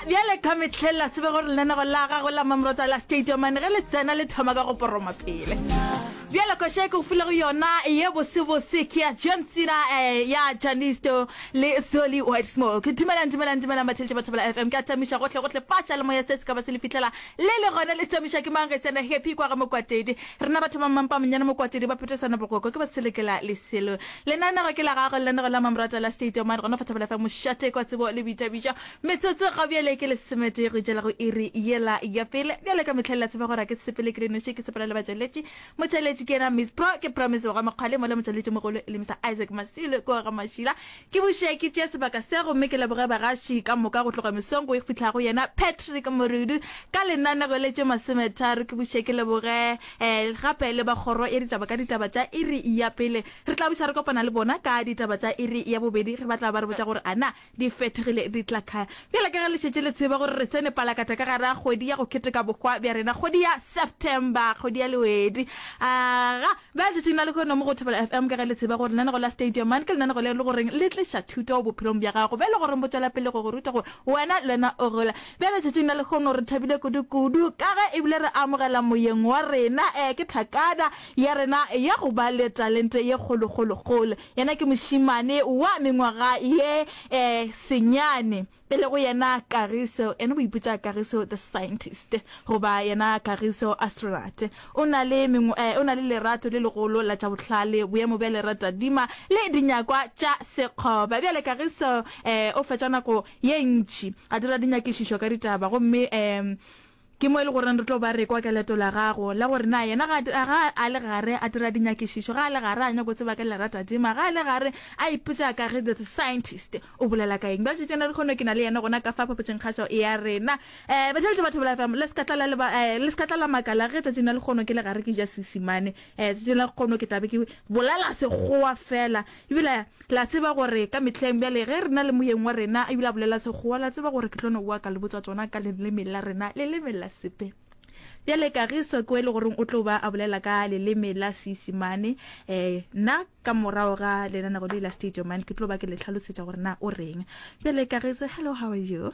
bjale ka metlheng la tsebe gore lenanego la gagwe la mamrota la stadium ane ge le tsena le thoma ka go poroma pele bjale koša e ke go filego yona ye bosebose ke ya john tsena um eh, ya janisto le soli white smoke dumelang dumelang dumelang batheletše batho bala f m ke a tamiša gohle gohle faša le moya se se ka ba se le fitlhela le le gona le tamiša ke mang getsena happy kwa ga mokwatedi rena batho ba mmampa monyane mokwatedi ba phetesana bokoko ke ba selekela leselo Lenaneo ke la gago, lenaneo la Mamoratwa la State Omar, gona fa Thapelo FM, Mošate kwa Tsebo le Boithabišo. Metsotso ga bjale ke lesometee go tšela go iri yela ya pele. Bjale ka mehleng la tseba gore ga ke sepele ke le noši, ke sepela le batšweletši. Motšweletši ke yena Miss Pro, ke Promise Bogamokgwale, mola motšweletši mogolo e le Mister Isaac Masilo kua ga Mašila. Ke buše ke tšee sebaka se gomme ke leboge bagaši ka moka go tloga mesong go e fihla go yena Patrick Morudu ka lenaneo le tše masometharo. Ke buše ke leboge. Gape le ba kgoro ya ditaba ka ditaba tša iri ya pele re tla buša re kopana le bona ka ditaba tša iri ya bobedi ge ba tla ba re botša gore a na di fethegile di tla kae. Bjale ka ge le šetše le tseba gore re tsene palakata ka gare ga kgwedi ya go keteka bohwa bja rena, kgwedi ya September, kgwedi ya lewedi, a ga bjale letšatšing la lehono mo go Thobela FM ka ge le tseba gore lenanego la Stadium Man ke lenanego le e le goreng le tliša thuto bophelong bja gago bjo e le goreng bo tšwela pele go go ruta gore wena le wena o gola Bjale letšatšing la lehono re thabile kudu-kudu ka ge e bile re amogela moyeng wa rena, ee, ke thakada ya rena ya go ba le talente ye kgolo-kgolo-kgolo. Yena ke mošemane wa mengwaga ye e senyane, e lego yena Kagiso, yena o ipitša Kagiso the Scientist, goba yena Kagiso Astronaut. O na le, ee, o na le lerato le legolo la tša bohlale, boemo bja leratadima le dinyakwa tša sekgoba. Bjale Kagiso, ee, o fetša nako ye ntši, a dira dinyakišišo ka ditaba, gomme e, ke mo e le goreng re tlo ba re kwa ka leto la gago, la gore na yena ga a, ga a le gare a dira dinyakišišo, ga a le gare a nyako tseba ka lera tadima, ga a le gare a ipotša ka ge the scientist o bolela ka eng. Bjale tšena lehono ke na le yena gona ka fa phapotšengkgašo ya rena. E, Batšweletši ba Thobela FM, le se ka tla la leba, e, le se ka tla la makala ge tšatšing la lehono ke le gare ke ja Seesimane. E, tšatšing la lehono ke tla be ke bolela Sekgowa feela. E bile, la tseba gore ka mehleng, bjale, ge re na le moyeng wa rena a bile a bolela Sekgowa, la tseba gore ke tlo no boa ka le botsa tsona ka leleme la rena, leleme la Sepe. Bjale, Kagiso, ke o e le goreng o tlo ba a bolela ka leleme la Seisemane, e, nna, ka morago ga lenaneo le la State Your Mind, ke tlo ba ke le hlalosetša gore na o reng. Bjale, Kagiso, hello, how are you?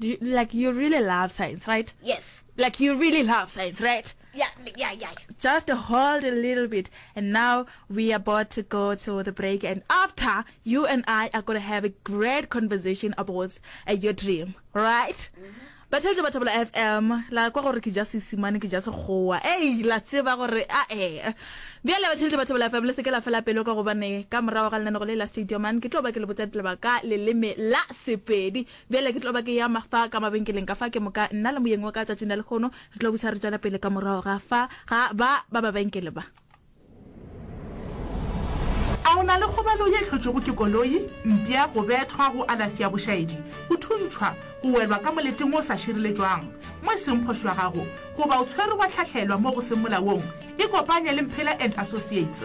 Do you, like you really love science, right? Yes. Like you really love science, right? Yeah, yeah, yeah. Just hold a little bit. And now we are about to go to the break. And after, you and I are going to have a great conversation about uh, your dream, right? Mm-hmm. ba tšheletse batho bola fm la kwa gore ke ja sesimane ke ja sekgowa ei la tseba gore a e bjale ba tšheletse batho bola fm le seke la fela pelo ka gobane ka morago ga lenaneko le la stadium an ke tlo ba ke le botsa ditlebaka leleme la sepedi Bjale ke tlo ba ke eya ma fa ka mabenkeleng ka fa, ke moka nna le moyeng wa ka tšatšing la lekgono re tlo busa re tšwela pele ka morago ga fa ga ba ba babenkele ba. A o na le kgobalo ye hlotšwego ke koloi, mpya, go bethwa, go alafsi ya bošaedi, go thuntšhwa, go welwa ka moleting o sa šireletšwang mo e seng phošo ya gago, goba o tshwerwe wa hlahlelwa mo go seng molaong? Ikopanye le Mphela and Associates.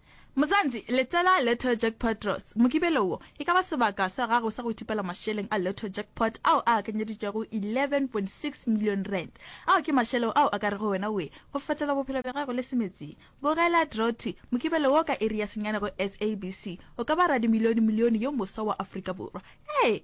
Mozansi, Letela Lotto Jackpot Draws. Mokibelo wo e ka ba sebaka sa gago sa go ithopela mašeleng a Lotto Jackpot ao a akanyeditšwego R11.6 million, ao ke mašeleo ao a ka rego wena oe go fetola bophelo bja gago le semetsing. Bogela Draw Two, Mokibelo wo ka iri ya senyane go SABC. O ka ba radimilione-milione yo moswa wa Afrika Borwa. Ee!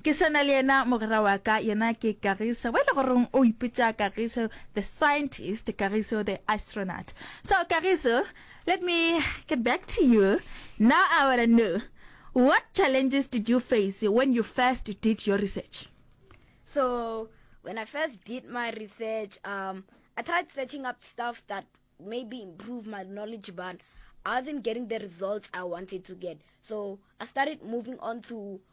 Ke sa na le yena mogwera wa ka, yena ke Kagiso. Mo e le goreng o ipitša Kagiso the scientist, Kagiso the astronaut. So Kagiso, let me get back to you. Now I wanna know, what challenges did you face when you first did your research? So when I first did my research, um, I tried searching up stuff that maybe improve my knowledge, but I wasn't getting the results I wanted to get. So I started moving on to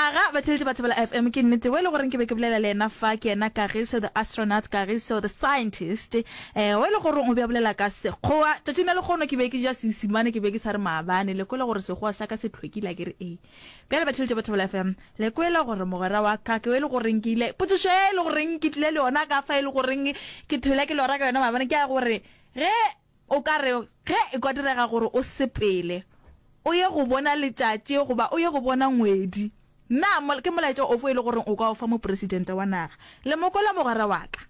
Aga batheletši ba Thobela FM, ke nnete we le gore ke be ke bolela le yena fa, ke yena Kagiso the Astronaut, Kagiso the Scientist, eh, we le gore o be a bolela ka Sekgowa. Tšatšing la lekgono ke be ke ja Seesimane, ke be ke sa re maabane, le kwele gore Sekgowa sa ka se tlhwekile, a ke re ee. Bjale batheletši ba Thobela FM, le kwele gore mogwera wa ka ke we le goreng ke ile, potšišo ye le goreng ke tlile le yona ka fa e le goreng ke thwele ke lora ka yona maabane ke ya gore, ge O ka re ge e ka direga gore o sepele o ye go bona letšatši goba o ye go bona ngwedi, na ke molaetša ofe o e lego gore o ka o fa Mopresidente wa naga? Le mo kwela, mogwera wa ka?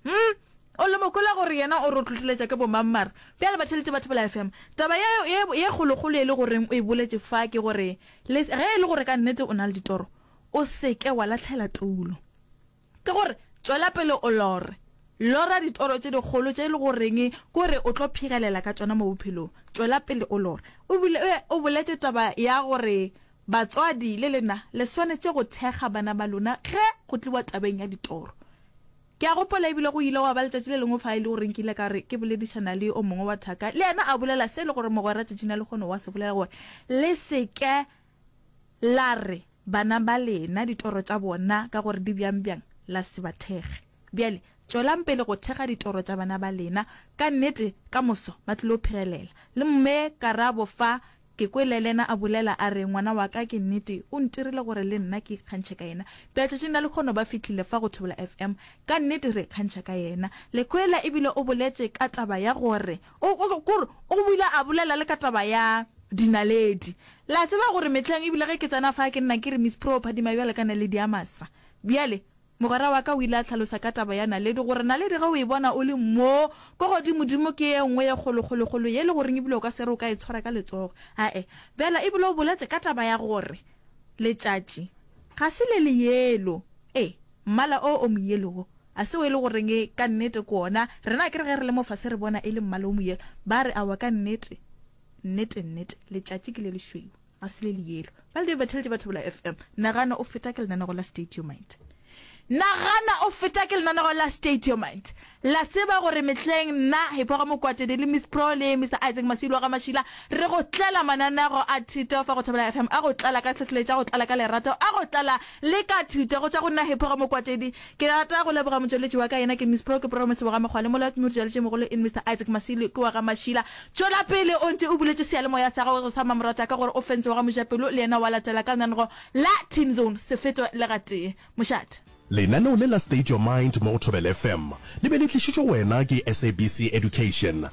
Hum? O le mo kwela gore yena o re o hlohleletša ke bomang? Mara bjale, batheeletši ba Thobela FM, taba ye, ye, ye kgolokgolo e le goreng o e boletše fa ke gore le, ge e le gore ka nnete o na le ditoro, o se ke wa lahlela tulo. Ke go re, tšwela pele o lore. Lora ditoro tše dikgolo tše e lego goreng ke gore o tlo phegelela ka tšona mo bophelong. Tšwela pele o lore. O bile o boletše taba ya gore batswadi le lena le swanetše go thekga bana ba lona ge go tliwa tabeng ya ditoro. Ke a gopola e bile go ile gwa ba letšatši le lengwe fa e le gore nkile ka re ke boledišana le o mongwe wa thaka, le yena a bolela se e lego gore mogwera tšatšing la lehono wa se bolela gore le se ke La re, Bana ba lena, ditoro tša bona ka gore di bjang-bjang, la se ba thekge. Bjale, tšwelang pele go thekga ditoro tša bana ba lena. Ka nnete, ka moso ba tlilo phegelela. Le Mme Karabo fa, ke kwele lena a bolela, a re, Ngwana wa ka, ke nnete, o ntirile gore le nna ke ikgantšhe ka yena. Bjale tšatšing la lekgono ba fihlile fa go Thobela FM. Ka nnete re ikgantšha ka yena. Le kwela, e bile o boletše ka taba ya gore O, o, ke gore O bile a bolela le ka taba ya dinaledi. Le a tseba gore mehleng, ebile ge ke tsena fa, ke nna ke re, Miss Prue, phadima bjalo ka naledi ya masa. Bjale, mogwera wa ka o ile a hlalosa ka taba ya naledi, gore naledi ge o e bona o le mo ko godimodimo ke ye nngwe ye kgolokgolokgolo, ye e le goreng ebile o ka se re o ka e tshwara ka letsogo. Ae. Bjale, ebile o boletše ka taba ya gore letšatši ga se le le yelo. Ee. Mmala o o moyelo wo, a se o e le goreng ka nnete ke wona? Rena akere ge re le mo fase re bona e le mmala o moyelo? Ba re, Aowa, ka nnete, nnete-nnete, letšatši ke le lešweu, ga se le leyelo. Ba le dibethele tše ba thebola FM. Nagana o feta ke lenanego la State Your Mind. Nagana o feta ke lenanego la State Your Mind. La tseba gore mehleng nna, Hiphoga Mokwatedi le Miss Pro le Mister Isaac Masilwa ga Mašila re go tlela mananeago a thuto fa go Thobela FM, a go tlala ka tlhohleletšo, a go tlala ka lerato, a go tlala le ka thuto go tšwa go nna Hiphoga Mokwatedi. Ke rata go leboga motšweletši wa ka, yena ke Miss Pro, ke Promise Bogamekgwa le molaodi modiršaletši mogolo in Mister Isaac Masilwa kua ga Mašila. Tšwela pele o ntše o buletše seyalemoya sa gago sa mmamoratwa ka gore o fence wa ga Mojapelo le yena wa latela ka lenaneo la Team Zone, se fetwe le gatee. Mošate. Lenaneo le la State Your Mind mo go Thobela FM le be le tlišitšwe go wena ke SABC Education.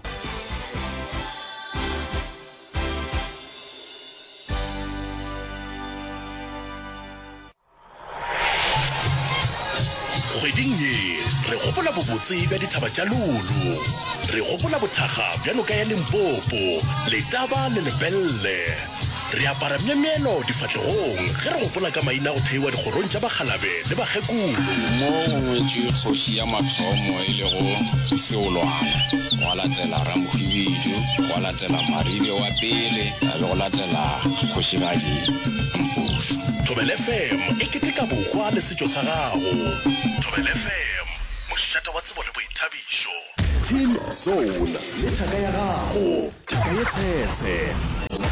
Kgweding ye, re gopola bobotse bja dithaba tša Lulu. Re gopola bothakga bja noka ya Limpopo, Letaba le Lepelle. Re apara myemyelo difahlegong ge re gopola ka maina a go theiwa dikgorong tša bakgalabe le bakgekulu. Mo go ngwetšwe kgoši ya mathomo e lego Seolwana, gwa latela Ramhwibidu, gwa latela Maribe wa pele, ga be go latela Kgošigadi Mpušu. Thobela FM e keteka bohwa le setšo sa gago. Thobela FM, mošate wa tsebo le boithabišo. Team Zone le thaka ya gago. Thaka ye tshetshe.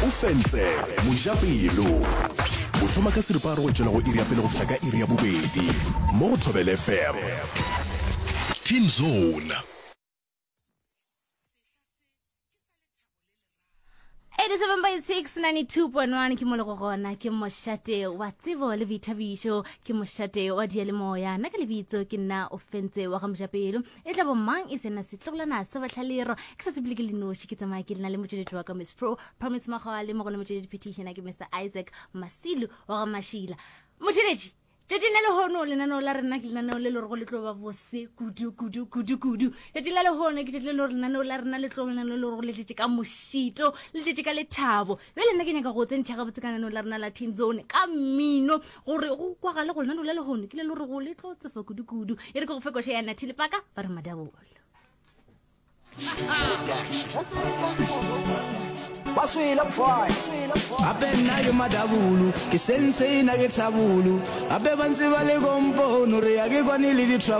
O fentse. Mojapelo. O thoma ka seripagare go tšwela go iri ya pele go fihla ka iri ya bobedi. Mo go Thobela FM. Team Zone. It is 7 by 6, 92.1 ke molego gona ke mošate wa tsebo le boithabišo ke mošate wa dialemoya nna ka lebitso ke nna o fentse wa ga mojapelo E tla bo mang e sena setlogolana sa batlhalero ke sa tsebile ke le noši ke tsamaya ke lena le motšweletši wa ka miss pro promise makgowa le mo go le motšweletši phetišena ke mr isaac masilu wa ga mašila motšweletši tšatšing la lehono lenaneo la rena ke lenaneo le lorego le tlo ba bose kudu kudu kudu kudu tšatšing la lehono ke tšatši le lore lenaneo la rena le tlo lenaneo le lorego le tletše ka mošito le tletše ka lethabo Bjale nna ke nyaka go tsentšha gabotse ka lenaneo la rena la Teen Zone ka mmino gore go kwagale go lenaneo la lehono ke le lo re go le tlo tsefa kudu-kudu. E re ke go fe koša ya Nathile Paka ba re madabolo. Baswela mfai Abe nna ke madabulu Ke sensei na ke tlhabulu Abe ba ntse ba le kompono Re ya ke kwane le di trouble